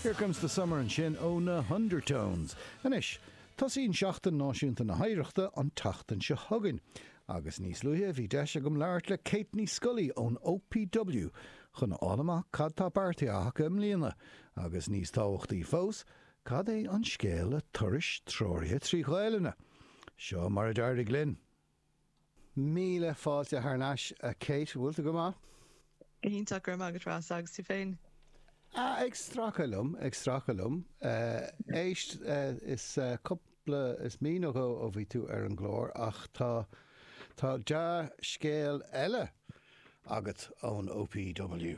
Here Comes the Summer ansin ó na hUndertones. Anois, tosaíonn Seachtain Náisiúnta na hOidhreachta an tseachtain seo chugainn agus níos luaithe bhí deis agam labhairt le Kate Ní Scolaí ón OPW chun a fháil amach cad tá beartaithe acu i mbliana agus níos tábhachtaí fós, cad é an scéal le turais treoraithe trí Ghaelainne. Seo mar a d'éirigh linn. Míle fáilte thar n-ais a Kate, bhfuil tú go maith? Iontach, go raibh maith agat Rossa, agus tú féin? Ah, ag stracadh liom, ag stracadh liom. Éist, is cúpla, is mí nó dhó ó bhí tú ar an gclár ach tá, tá dea-scéal eile agat ón OPW.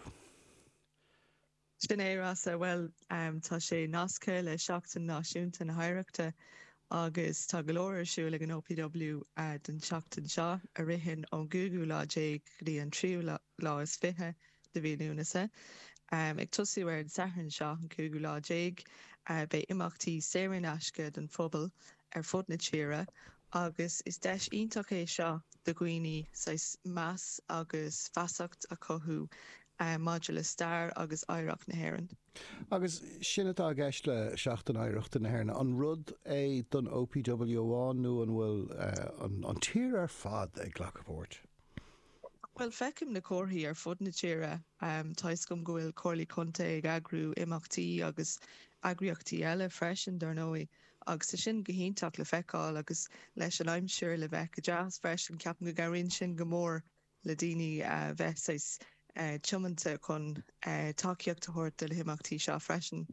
Sin é, Rossa. Bhuel, tá sé nasctha le Seachtain Náisiúnta na hOidhreachta agus tá go leor ar siúl ag an OPW don tseachtain seo, a ritheann ón gcúigiú lá déag go dtí an tríú lá is fiche de mhí Lúnasa. Ag tosú ar an Satharn seo, an cúigiú lá déag, beidh imeachtaí saor in aisce don phobal ar fud na tíre agus is deis iontach é seo do dhaoine saghas meas agus feasacht a chothú maidir le stair agus oidhreacht na hÉireann. Agus sin atá i gceist le Seachtain Oidhreachta na hÉireann. An rud é don OPW amháin nó an bhfuil an tír ar fad ag glacadh páirt? Bhuel, feicim na comharthaí ar fud na tíre toisc go bhfuil Comhairlí Contae ag eagrú imeachtaí agus eagraíochtaí eile freisin, dar ndóigh, agus tá sin go hiontach le feiceáil. Agus leis an aimsir le bheith go deas freisin, ceapaim go gcabhraíonn sin go mór le daoine a bheith saghas tiomanta chun tacaíocht a thabhairt do na himeachtaí seo freisin.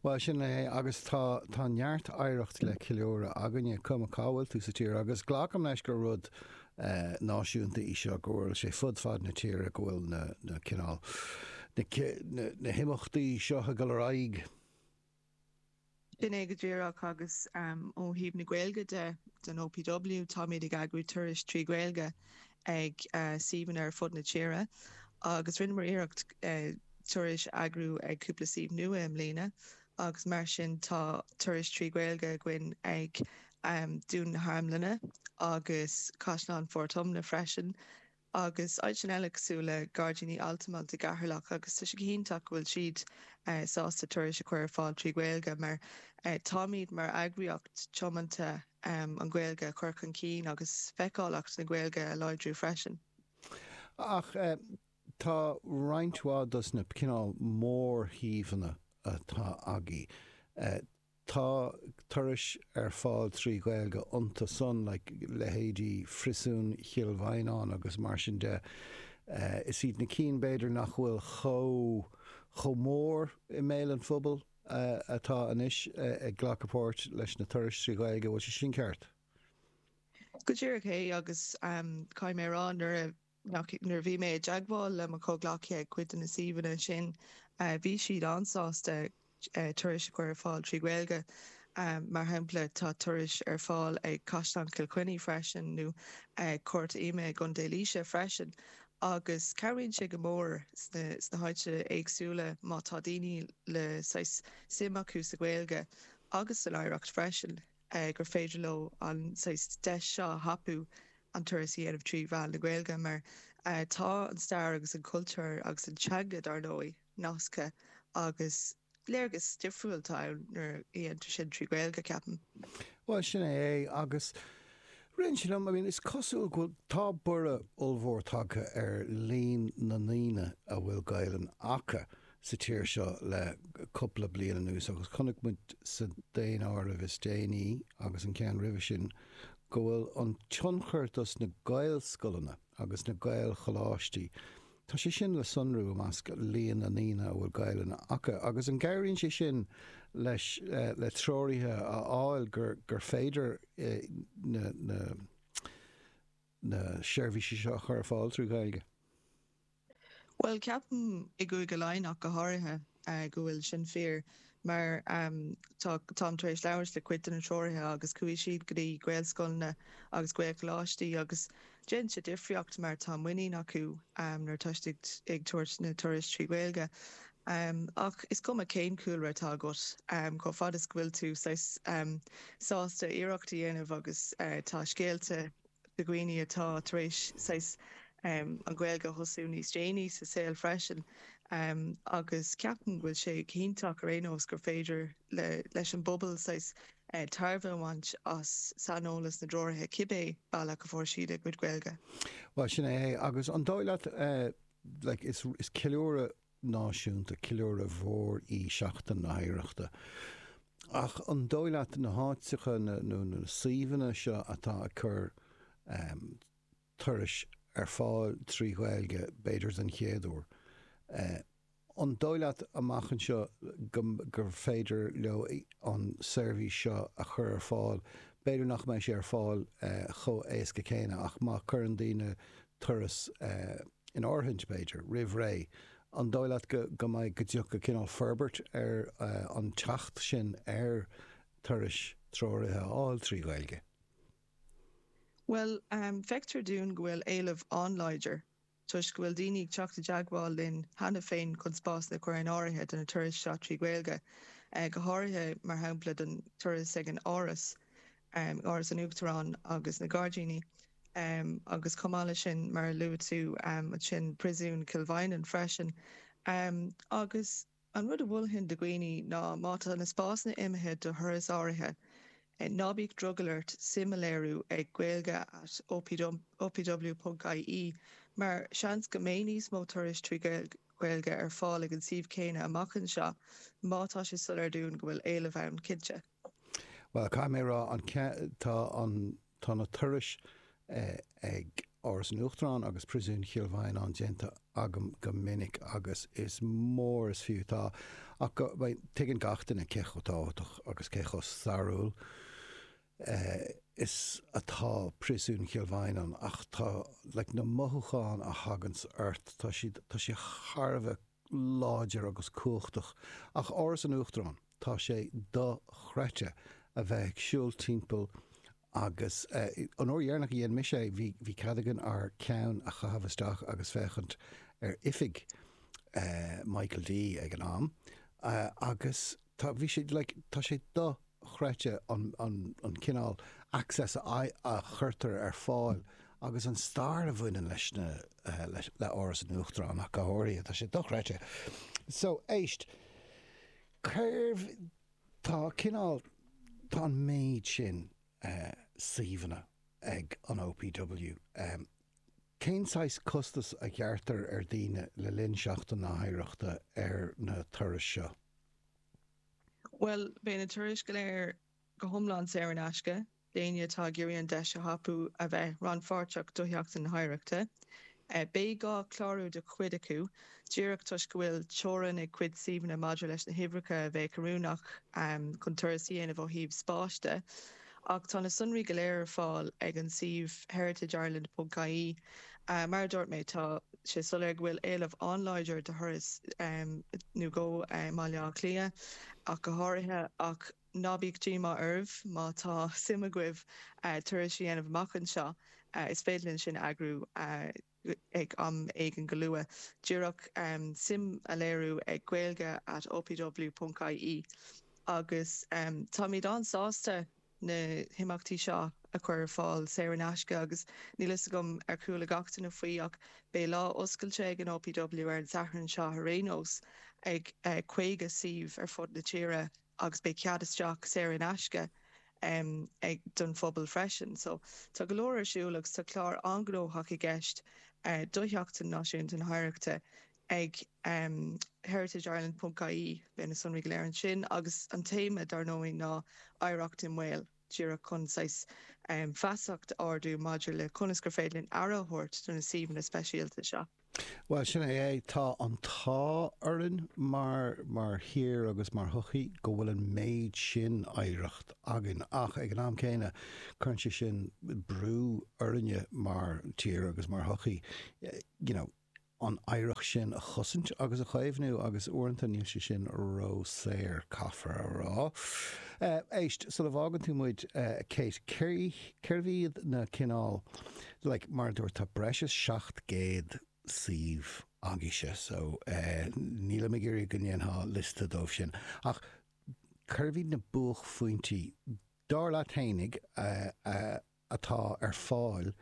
Bhuel, sin é agus tá, tá neart oidhreacht le ceiliúradh againne, cuma cá bhfuil tú sa tír agus glacaim leis gur rud náisiúnta é seo, go bhfuil sé fud fad na tíre, go bhfuil na cineál, na himeachtaí seo ag dul ar aghaidh. Sin é go díreach agus ó thaobh na Gaeilge de, den OPW, táimid ag eagrú turais trí Ghaeilge ag suíomhanna ar fud na tíre agus rinneamar iarracht turais a eagrú ag cúpla suíomh nua i mbliana agus mar sin tá turais trí Ghaeilge againn ag Dún na hArmlainne agus Caisleán Phort Omna freisin. agus áiteanna eile cosúil le Gairdíní Altamont i gCeatharlach agus tá sé go hiontach go bhfuil siad sásta turais a chur ar fáil trí Ghaeilge mar táimid mar eagraíocht tiomanta an Ghaeilge a chur chun cinn agus feiceálacht na Gaeilge a láidriú freisin. Ach tá roinnt mhaith dos na cineál mór-shuíomhanna atá againn, Tá turais ar fáil trí Ghaeilge iontu san, leithéidí Phriosún Chill Mhaighneáin agus mar sin de. Is iad na cinn b'fhéidir nach bhfuil chomh mór i mbéal an phobail atá anois ag glacadh páirt leis na turais trí Ghaeilge, an bhfuil sé sin ceart? Go díreach é agus caithfidh mé a rá nuair a. Nuair a bhí mé i dteagmháil le mo chomhghleacaithe ag cuid de na suíomhanna sin, bhí siad an-sásta turais a chur ar fáil trí Ghaeilge. Mar shampla, tá turais ar fáil ag Caisleán Chill Chainnigh freisin, nó ag Cúirt Ioma i gContae Laoise freisin, agus cabhraíonn sé go mór sna háiteanna éagsúla má tá daoine le saghas suim acu sa Ghaeilge agus san oidhreacht freisin. gur féidir leo an saghas deis seo a thapú an turas a dhéanamh trí mheán na Gaeilge mar tá an stair agus an cultúr agus an teanga, dár ndóigh, nasctha agus léargas difriúil atá ann nuair a dhéantar sin trí Ghaeilge, ceapaim. Bhuel, sin é é agus ritheann sé liom, I mean, is cosúil go bhfuil, tá borradh ollmhór tagtha ar líon na ndaoine a bhfuil Gaelainn acu sa tír seo le cúpla bliain anuas agus chonaic muid sa daonáireamh is déanaí agus an ceann roimhe sin go bhfuil an tionchar dos na Gaelscoileanna agus na Gaelcholáistí, tá sé sin le sonrú i measc líon na ndaoine a bhfuil Gaelainn acu agus an gcabhraíonn sé sin le, le treoraithe a fháil gur féidir na na seirbhísí seo a chur ar fáil trí Ghaeilge? Bhuel, ceapaim, i gCúige Laighean ach go háirithe, go bhfuil sin fíor mar táim tar éis labhairt le cuid de na treoraithe agus chuaigh siad go dtí Gaelscoileanna agus Gaelcholáistí agus déanann sé difríocht mar tá muinín acu nuair atá siad ag tabhairt na turais trí Ghaeilge. Um, ach is cuma cén cúlra atá agat, um, chomh fada is go bhfuil tú saghas, um, sásta iarracht a dhéanamh agus, uh, tá scéalta de dhaoine atá tar éis saghas, um, an Ghaeilge a thosú níos déanaí sa saol freisin, um, agus ceapaim go bhfuil sé go hiontach ar aon nós gur féidir le, leis an bpobal saghas, eh, tairbhe a bhaint as saineolas na dtreoraithe cibé bealach a fuair siad a gcuid Gaeilge. Bhuel, sin é é. Agus an dóigh leat, eh, like, is, is ceiliúradh náisiúnta. Ceiliúradh mhór í Seachtain na hOidhreachta ach an dóigh leat na háiteacha nó na suíomhanna seo atá ag cur turais ar fáil trí Ghaeilge, b'fhéidir den chéad uair, an dóigh leat amach anseo gur féidir leo an seirbhís seo a chur ar fáil? B'fhéidir nach mbeidh sé ar fáil chomh héasca céanna ach má chuireann daoine turas. in áirithe, b'fhéidir, roimh ré, an dóigh leat go go mbeidh go dtiocfaidh cineál forbairt ar an teacht sin ar turais treoraithe a fháil trí Ghaeilge? Bhuel, feictear dúinn go bhfuil éileamh an-láidir toisc go bhfuil daoine ag teacht i dteagmháil linn cheana féin chun spásanna a chur in áirithe do na turais seo trí Ghaeilge, go háirithe, mar shampla, don turas ag an Áras um Áras an Uachtaráin agus na Gairdíní um agus chomh maith leis sin, mar a luaigh tú um ansin, Príosún Chill Mhaighneann freisin. um Agus an rud a mholfainn do dhaoine ná má tá na spásanna imithe do thuras áirithe, ná bíodh drogall ort suim a léiriú ag gaeilge at opw ponc ie mar seans go mbeidh níos mó turas trí Ghaeilge ar fáil ag an suíomh céanna amach anseo má tá sé soiléir dúinn go bhfuil éileamh ann, cinnte. Bhuel, caithfidh mé a rá, an, tá an, tá na turais ag Áras an Uachtaráin agus Priosún Chill Mhaighneáin déanta agam go minic agus is mór is fiú, tá, ach tuigeann gach duine cé chomh tábhachtach agus cé chomh stairiúil is atá Priosún Chill Mhaighneáin ach tá, like, na mothúcháin a thaganns ort, tá siad, tá sé thar a bheith láidir agus cumhachtach. Ach Áras an Uachtaráin, tá sé dochreidte a bheith ag siúl timpeall agus, an uair dheireanach a dhéan mise é, bhí cead againn ár gceann a chaitheamh isteach agus féachaint ar oifig Michael D. ag an am agus tá, bhí sé, like, tá sé do chreidte an cineál access a chuirtear ar fáil agus an stair a bhaineann leis na le Áras an Uachtaráin ach go háirithe. Tá sé dochreidte. So, éist, cérbh tá cineál tá an méid sin suíomhanna ag an OPW. Cén saghas costas a ghearrtar ar daoine le linn Sheachtain na hOidhreachta ar na turais seo? Bhuel, beidh na turais go léir go hiomlán saor in aisce d'éinne atá ag iarraidh an deis a thapú a bheith rannpháirteach do Sheachtain na hOidhreachta. Beidh gá clárú do chuid acu díreach toisc go bhfuil teorainn ag cuid suíomhanna maidir leis na huimhreacha a bheadh oiriúnach chun turas a dhéanamh ó thaobh spáis de. ach tá na sonraí go léir ar fáil ag an suíomh heritageireland.ie. Mar a dúirt mé, tá sé soiléir go bhfuil éileamh an-láidir do thurais i mBaile Átha Cliath ach go háirithe, ach ná bíodh díomá oraibh, má tá suim agaibh turas a dhéanamh amach anseo, is féidir linn sin a eagrú. ag am éigin go luath, díreach suim a léiriú ag gaeilge at opw ponc ie agus táimid an-sásta na himeachtaí seo a chur ar fáil saor in aisce agus níl fhios agam ar chuala gach duine faoi ach beidh lá oscailte ag an OPW ar an Satharn seo ar aon nós ag 50 suíomh ar fud na tíre. agus beidh cead isteach saor in aisce ag don phobal freisin. So tá go leor ar siúl agus tá clár an-gnóthach i gceist do Sheachtain Náisiúnta na hOidhreachta ag heritageireland ponc ie. Beidh na sonraí go léir ansin agus an téama dár ndóigh ná Oidhreacht i mBaol. díreach chun saghas feasacht ardú maidir le conas gur féidir linn aire a thabhairt do na suíomhanna speisialta seo. Bhuel, sin é. Tá an t-ádh orainn mar mar thír agus mar shochaí go bhfuil an méid sin oidhreacht againn ach ag an am céanna cuireann sé sin brú orainne mar tír agus mar shochaí you know, an oidhreacht sin a chosaint agus a chaomhnú agus uaireanta níl sé sin róshaor, caithfear a rá. Éist, sula bhfágann tú muid, a Kate, cérbh iad na cineál, like, mar a dúirt, tá breis is 700 suíomh agaibhse so nílim ag iarraidh go ndéanfá liosta díobh sin ach cérbh iad na buachphointí, dar leat fhéinig, e. atá ar fáil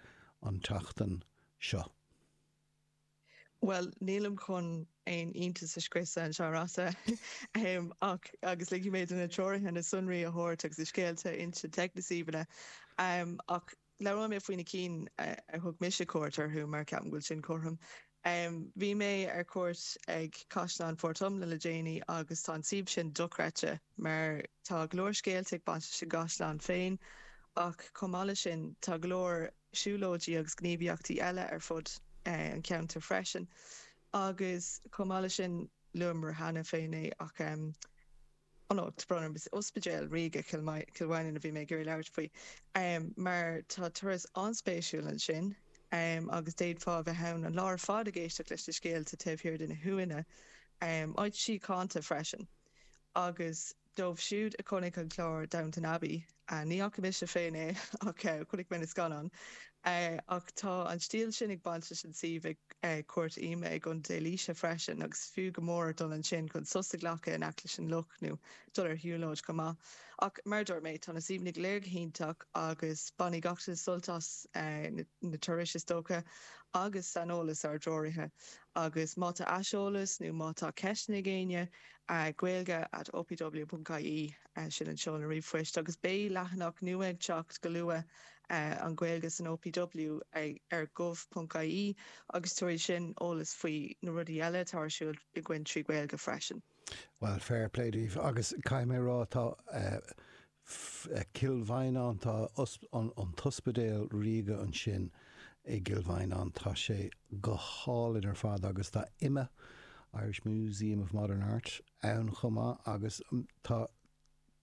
an tseachtain seo. Bhuel, nílim chun aon iontas a scriosadh anseo, a Rossa, ach, agus ligfidh mé do na treoraithe na sonraí a thabhairt agus na scéalta a insint ag na suíomhanna, ach labhróidh mé faoi na cinn ar thug mise cuairt orthu mar ceapaim go bhfuil sin cothrom. Um bhí mé ar cuairt ag Caisleán Phort Omna le déanaí agus tá an suíomh sin dochreidte mar tá go leor scéalta ag baint leis an gcaisleán féin ach chomh maith leis sin tá go leor siúlóidí agus gníomhaíochtaí eile ar fud an cheantair freisin agus chomh maith leis sin luamar cheana féin é ach ó, tá brón orm, is Ospidéal Ríoga Chill Mhaighneann a bhí mé ag iarraidh labhairt faoi mar tá turas an-spéisiúil ansin agus d'fhéadfá a bheith ann an lá ar fad ag éisteacht leis na scéalta taobh thiar de na huaigheanna, áit shíochánta freisin agus dóibh siúd a chonaic an clár Downton Abbey, Ah, ní fhaca mise féin é ach chonaic mé na scannáin. Ach tá an stíl sin ag baint leis an suíomh ag Cúirt Ioma i gContae Laoise freisin agus is fiú go mór dul ansin chun sos a ghlacadh in aice leis an loch nó dul ar shiúlóid chomh maith. Ach mar a dúirt mé, tá na suíomhanna go léir go hiontach agus bainfidh gach duine sult as na turais is dócha agus saineolas ár dtreoraithe. Agus má tá aiseolas nó má tá ceisteanna ag éinne, gaeilge at opw.ie. sin an seoladh ríomhphoist agus beidh leathanach nua ag teacht go luath, An Ghaeilge san OPW, ar gov.ie agus tabharfaidh sin eolas faoi na rudaí eile atá ar siúl againn trí Ghaeilge freisin. Bhuel, fair play daoibh agus caithfidh mé a rá, tá Cill Mhaighneáin, tá an tOspidéal Ríoga ansin i gCill Mhaighneáin, tá sé go hálainn ar fad agus tá imma, Irish Museum of Modern Art, ann chomh maith agus tá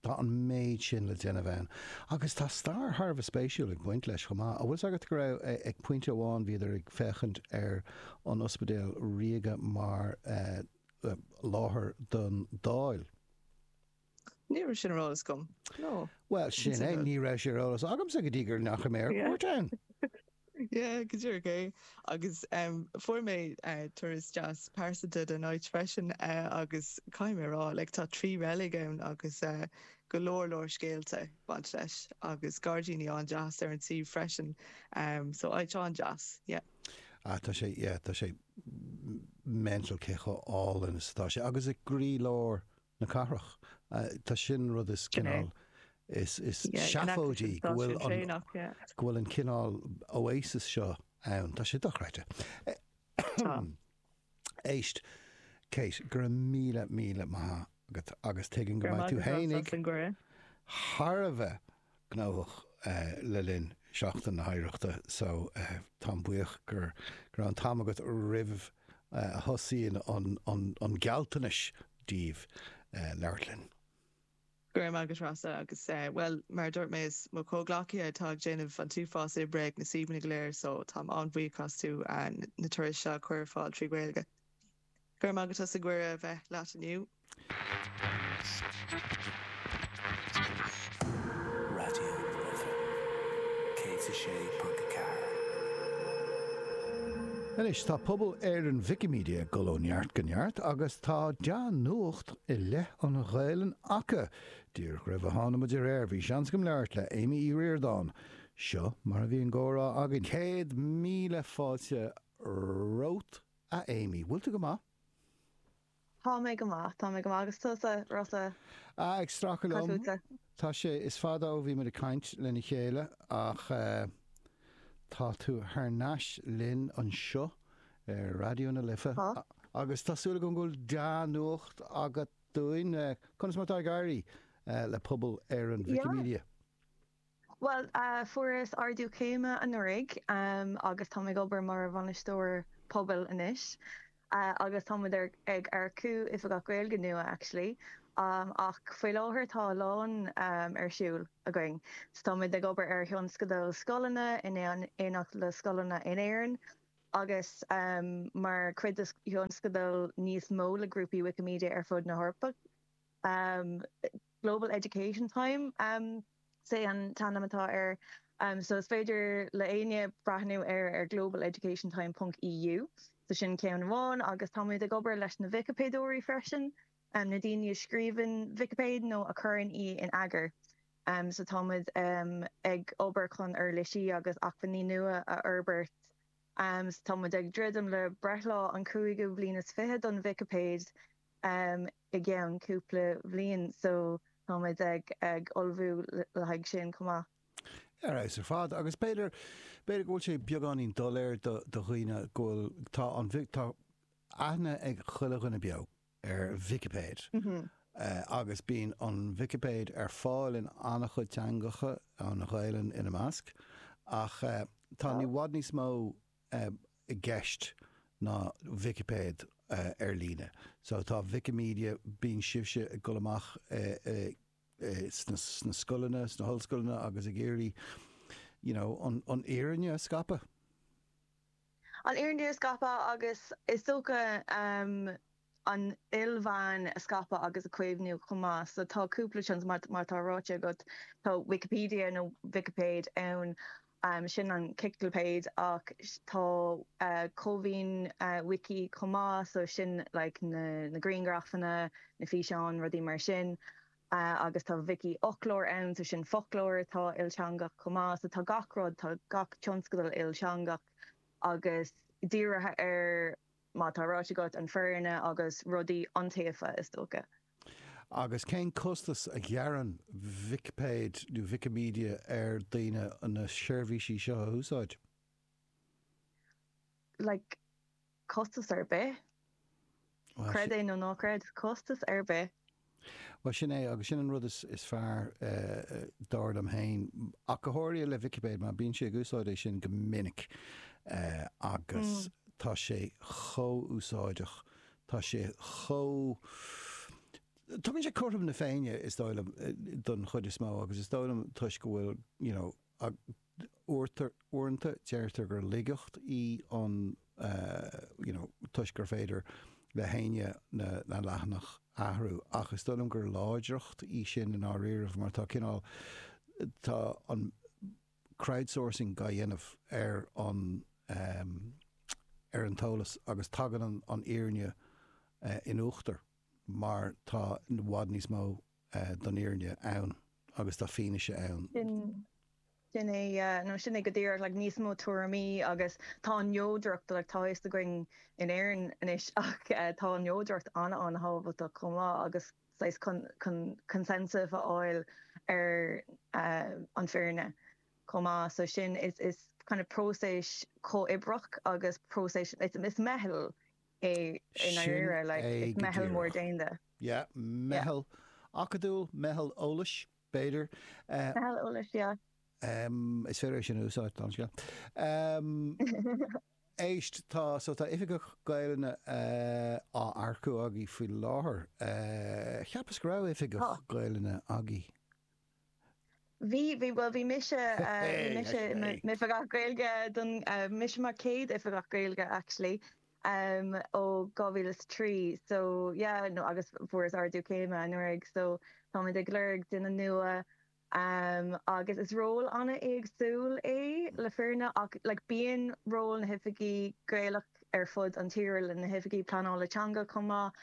tá an méid sin le déanamh ann agus tá stair thar a bheith spéisiúil ag baint leis chomh maith. An bhfuil 's agat go raibh ag pointe amháin, bhíodar ag féachaint ar an Ospidéal Ríoga mar láthair don Dáil? Ní raibh sin ar eolas agam. No. Bhuel sin é ní raibh sé ar eolas agamsa go dtí gur ndeachaigh mé ar cuairt ann. Yeah, go díreach é. Agus em, fuair mé eh, turas deas pearsanta den áit freisin eh, agus caithfidh mé a rá, like, tá trí reilig ann agus eh, go leor leor scéalta ag baint leis agus gairdíní an-deas ar an suíomh freisin. Um, so áit an-deas, yeah. Ah, tá sé, yeah, tá sé mental cé chomh álainn is atá sé. Agus i gcroí lár na cathrach. Tá, sin an rud is cineál is seafóidí go bhfuil an cineál oasis seo ann. Tá sé dochreidte. Tá. Éist, Kate, go raibh míle, míle maith agat agus tuigim go mbeidh tú fhéinig thar a bheith gnóthach le linn Sheachtain na hOidhreachta so táim buíoch go raibh an t-am agat roimh a thosaíonn an ghealtachas daoibh labhairt linn. Go raibh maith agat a Rossa agus, bhuel, mar a dúirt mé is mo chomhghleacaithe atá ag déanamh an t-uafás oibre ag na suíomhanna go léir so táim an-bhuíoch astu na turais seo a chur ar fáil trí Ghaeilge. Go raibh maith agat as an gcuireadh a bheith leat inniu. Raidió na Life 106.4. Anois tá pobal Éireann Wikimedia ag dul ó neart go neart agus tá dea-nuacht i leith an Ghaelainn acu! Díreach roimh a tháinig muid ar aer bhí seans agam labhairt le Amy Uí Ríordáin. Seo mar a bhí an gcomhrá againn. Céad míle fáilte romhat A Amy, bhfuil tú go maith? Tá mé go maith, tá mé go maith. Agus tusa, Rossa? A, ag stracadh liom. Tá sé, is fada ó bhí muid ag caint lena chéile ach tá tú thar n-ais linn anseo ar Raidió na Life agus tá súil agam go bhfuil dea-nuacht agat dúinn. Conas mar atá ag éirí le pobal Éireann Wikimedia? Bhuel, fuaireas ardú céime anuraidh agus táim ag obair mar Bhainisteoir Pobail anois agus táimid ag earcú Oifigeach Gaeilge nua actually ach faoi láthair tá a lán ar siúl againn. So táimid ag obair ar thionscadal scoileanna in éineacht le scoileanna in Éirinn agus mar chuid de thionscadal níos mó le grúpaí Wikimedia ar fud na hEorpa. Global Education Time is é an t-ainm atá air so is féidir le éinne breathnú air ar global education time ponc eu so sin ceann amháin agus táimid ag obair leis na Vicipéideoirí freisin, na daoine a scríobhann Vicipéid nó a chuireann í in eagar so táimid ag obair chun uirlisí agus acmhainní nua a fhorbairt so táimid ag druidim le breithlá an chúigiú bliain is fiche don Vicipéid. i gceann cúpla bliain so táimid ag ullmhú le haghaidh sin chomh maith. Ar fheabhas ar fad agus b'fhéidir, b'fhéidir go bhfuil sé beagáinín doiléir do dhaoine go bhfuil, tá an, tá aithne ag chuile dhuine beo ar Vicipéid agus bíonn an Vicipéid ar fáil in an-chuid teangacha, an Ghaelainn ina measc ach tá i bhfad níos mó, i gceist ná Vicipéid ar líne. So tá Wikimedia, bíonn sibhse ag dul amach sna scoileanna, sna hollscoileanna agus ag iarraidh you know an fhírinne a scaipeadh. An fhírinne a scaipeadh agus is dócha. an ilmheáin a scaipeadh agus a chaomhnú chomh maith. So tá cúpla suíomh, mar atá ráite agat, tá Wikipedia nó Vicipéid ann, sin an ciclipéid, ach tá Cómhaoin Wiki chomh maith, so sin like na grianghrafanna, na físeáin, rudaí mar sin. Agus tá Vicífhoclóir ann, so sin foclóir atá ilteangach chomh maith. So tá gach rud, tá gach tionscadal ilteangach agus dírithe ar. mar atá ráite agat, an fhírinne agus rudaí iontaofa, is dócha. Agus cén costas a ghearrann Vicipéid nó Wikimedia ar dhaoine na seirbhísí seo a úsáid? like, costas ar bith. Creid é nó ná creid, costas ar bith. Bhuel, sin é, agus sin an rud is fearr, dar liom féin. Ach go háirithe le Vicipéid, mar bímse ag úsáid é sin go minic agus tá sé chomh úsáideach, tá sé chomh. Tugann sé cothrom na Féinne, is dóigh liom, don chuid is mó, agus is dóigh liom toisc go bhfuil, you know, uaireanta deirtear gur laigeacht í an you know toisc gur féidir le héinne na na leathanaigh a athrú ach is dóigh liom gur láidreacht í sin i ndáiríribh mar tá cineál tá an crowdsourcing á dhéanamh ar an ehm ar an eolas agus tagann an an fhírinne in uachtar mar tá i bhfad níos mó den fhírinne ann agus tá fianaise ann. Sin é, nó sin é go díreach, like, níos mó tuairimí agus tá an neodracht, like, tá a fhios againn in Éirinn anois ach tá an neodracht an-an-thábhachtach chomh maith agus saghas chun, chun consensus a fháil ar an bhfírinne chomh maith so sin is, is kind of próiseas comhoibreach agus próiseas, it's a, it's a meitheal. é i ndáiríre, like, is meitheal mór domhanda. Sin é go díreach. Yeah, Yeah. meitheal acadúil, meitheal eolais, b'fhéidir. Meitheal eolais, yeah. Em, is féidir é sin a úsáid, an scéal. Em, éist, tá, so tá oifigeach Gaelainne eh, á earcú agaí faoi láthair. Eh, cheapas go raibh Tá. oifigeach Gaelainne agaí. Bhí, bhí, bhuel bhí mise, bhí mise i m'Oifigeach Gaeilge don, mise mar chéad Oifigeach Gaeilge actually ó 2023 so yeah nó agus fuaireas ardú céime anuraidh so táimid ag lorg duine nua agus is ról an-éagsúil é le fírinne ach like bíonn ról na hOifigigh Gaeilge ar fud an tíre like na hOifigigh Pleanála Teanga chomh maith,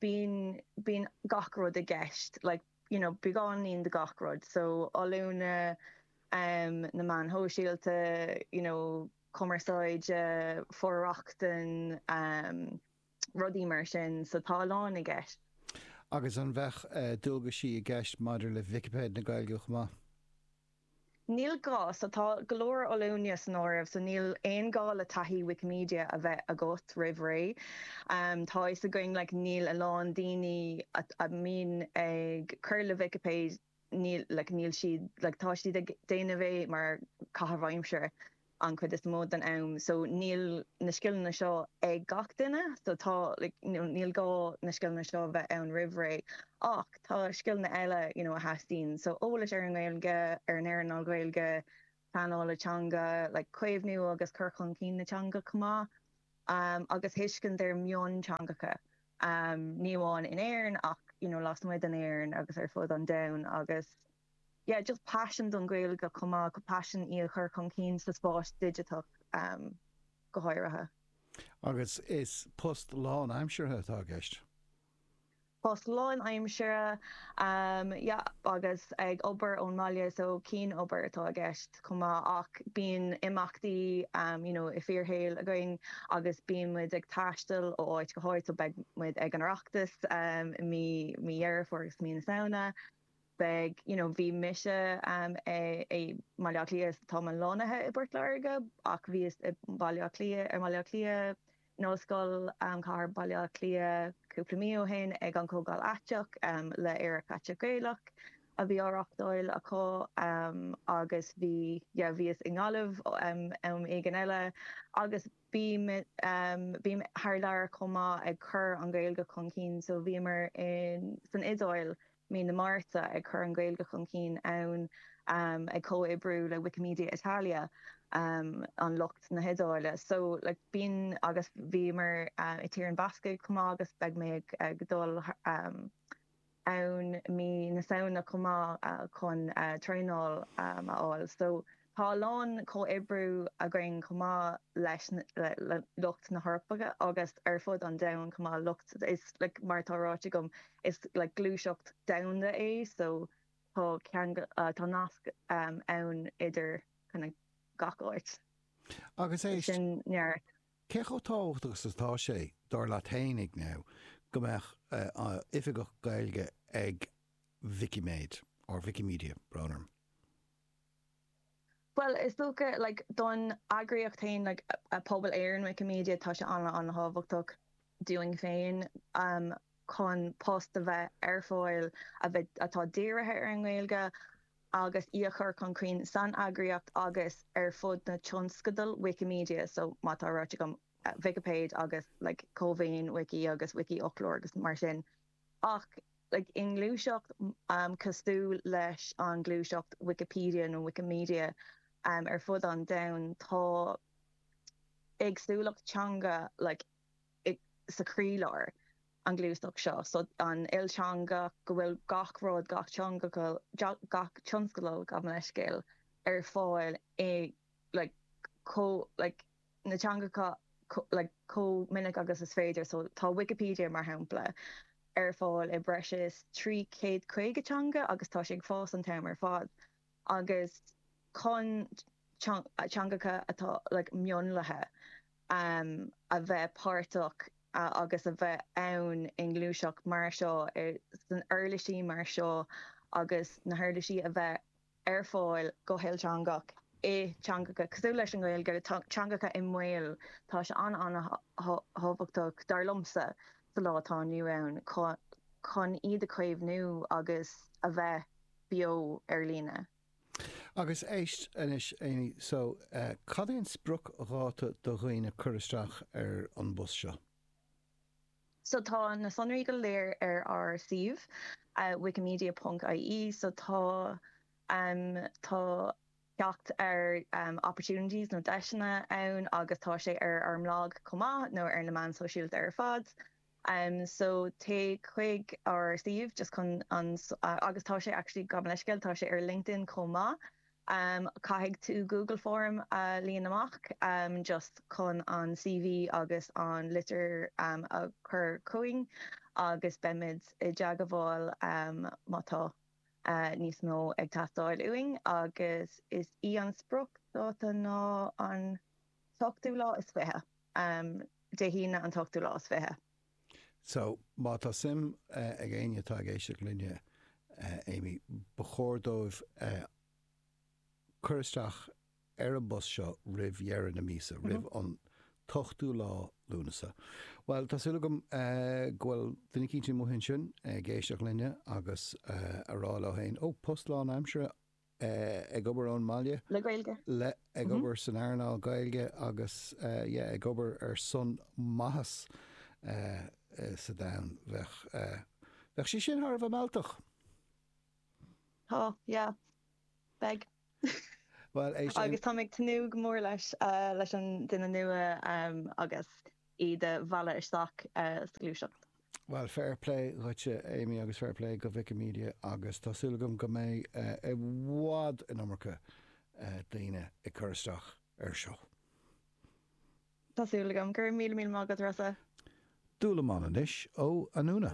bíonn, bíonn gach rud i gceist like. you know beagáinín de gach rud so oiliúna um na meáin shóisialta you know cumarsáide for-rochtain um rudaí mar sin so tá a lán i gceist. Agus an bheadh dualgaisí i gceist maidir le Vicipéid na Gaeilge chomh maith? Níl gá so tá go leor oiliúna san áireamh so níl aon ghá le taithí Wikimedia a bheith agat roimh ré. Tá fhios againn like níl a lán daoine a mbíonn ag cur le Vicipéid níl like níl siad like tá siad ag déanamh é mar caitheamh aimsire. an chuid is mó den am so níl na scileanna seo ag gach duine so tá like you know níl gá na scileanna seo a bheith ann roimh ré ach tá scileanna eile you know a theastaíonn so eolas ar an nGaeilge ar an earnáil Gaeilge pleanáil teanga like caomhnú agus cur chun cinn na teanga chomh maith um, agus tuiscint ar mionteangacha um, ní amháin in Éirinn ach you know, lasmuigh d'Éirinn agus ar fud an domhain agus Yeah agus paisean don Ghaeilge chomh maith paisean í a chur chun cinn sa spás digiteach go háirithe. Agus is post lánaimseartha atá i gceist? Post lánaimseartha, yeah, agus ag obair ón mbaile so cianobair atá i gceist chomh maith ach bíonn imeachtaí, you know, i bhfíorshaol againn agus bíonn muid ag taisteal ó áit go háit so beidh muid ag an Oireachtas i mí Dheireadh Fómhair agus mí na Samhna. beidh, you know, bhí mise um, i, i mBaile Átha Cliath is táim lonnaithe i bPort Láirge ach bhíos i mBaile Átha Cliath, ar mBaile Átha Cliath, in Ollscoil um, Chathair Bhaile Átha Cliath cúpla mí ó shin ag an Comhdháil Aiteach um, le AerachAiteachGaelach Gaelach a bhí á reáchtáil acu um, agus bhí, yeah, bhíos i nGaillimh um, am éigin eile agus Bím, bím thar lear chomh maith ag cur an Ghaeilge chun cinn. So bhíomar in, san Iodáil mí na Márta ag cur an Ghaeilge chun cinn ann, ag comhoibriú le Wikimedia Italia, an lucht na hIodáile. So like bíonn agus bhíomar i dTír na mBascach chomh maith agus beidh mé ag dul ann mí na Samhna chomh maith chun traenáil a fháil so tá a lán comhoibriú againn chomh maith leis le lucht na hEorpa agus ar fud an domhain chomh maith lucht like mar atá ráite agam is like gluaiseacht domhanda é so tá ceangal tá nasc ann idir kind of gach áit. Agus é sin neart. Cé chomh tábhachtach is atá sé, dar leat féin, Amy, go mbeadh oifigeach Gaeilge ag Vicipéid, or Wikimedia, brón orm? Bhuel, is dócha, like, don eagraíocht féin, like, Pobal Éireann Wikimedia, tá sé an-thábhachtach dúinn féin chun post a bheith ar fáil a bheith, atá dírithe ar an nGaeilge. agus í a chur chun cinn san eagraíocht agus ar fud na tionscadal Wikimedia so mar atá ráite agam Vicipéid agus like Cómhaoin Wiki agus Wikifhoclóir agus mar sin ach like i ngluaiseacht cosúil leis an ngluaiseacht Wikipedia nó Wikimedia ar fud an domhain tá éagsúlacht teanga like sa chroílár, an ghluaiseacht seo, so, an ilteangach, go bhfuil gach rud, gach tionscadal, gach tionscadal, gabh mo leithscéal, ar fáil i, like, chomh, like, na teangacha, like, chomh minic agus is féidir, so, tá Wikipedia, mar shampla, ar fáil i breis is 350 teanga agus tá sé ag fás an t-am ar fad. agus chun teangacha atá mionlaithe a bheith páirteach agus a bheith ann i ngluaiseacht mar seo, sna huirlisí mar seo agus na huirlisí a bheith ar fáil go hilteangach i dteangacha cosúil leis an nGaeilge, teangacha i mbaol. Tá sé an-an-thábhachtach, dar liomsa, sa lá atá inniu ann chun iad a chaomhnú agus a bheith beo ar líne. Agus éist anois, Amy, so, cad é an spriocdháta do dhaoine cur isteach ar an bpost seo? So tá na sonraí go léir ar ár suíomh, wikimedia ponc IE, so tá, tá teacht ar opportunities nó deiseanna ann agus tá sé ar ár mblag chomh maith nó ar na meáin sóisialta ar fad. So téigh chuig ár suíomh just chun an agus tá sé actually gabh mo leithscéal tá sé ar LinkedIn chomh maith. Caithfidh tú Google Form a líon amach just chun an CV agus an litir a chur chugainn agus beimid i dteagmháil má tá níos mó ag teastáil uainn agus is í an spriocdháta ná an t-ochtú lá is fiche. um Dé hAoine an t-ochtú lá is fiche. So, má tá suim ag éinne atá ag éisteacht linne, Amy, ba chóir dóibh cur isteach ar an bpost seo roimh dheireadh na míosa, roimh an t-ochtú lá Lúnasa. Bhuel, tá súil agam go bhfuil duine eicínt amuigh ansin ag éisteacht linne agus a rá leo féin, oh, post lánaimseartha, ag obair ón mbaile, ag obair san earnáil Ghaeilge agus yeah ag obair ar son maitheas sa domhan. Bheadh Bheadh sé sin thar a bheith mealltach. Tá, yeah. Beidh. Bhuel, é sin. Agus táim ag tnúth go mór leis, leis an duine nua agus. iad a mhealladh isteach sa ghluaiseacht. Bhuel, fair play dhuitse Amy agus fair play go Wikimedia agus tá súil agam go mbeidh i bhfad an iomarca daoine ag cur isteach air seo. Tá súil agam. Go raibh míle míle maith agat Rossa. Dúlamán anois ó Anúna.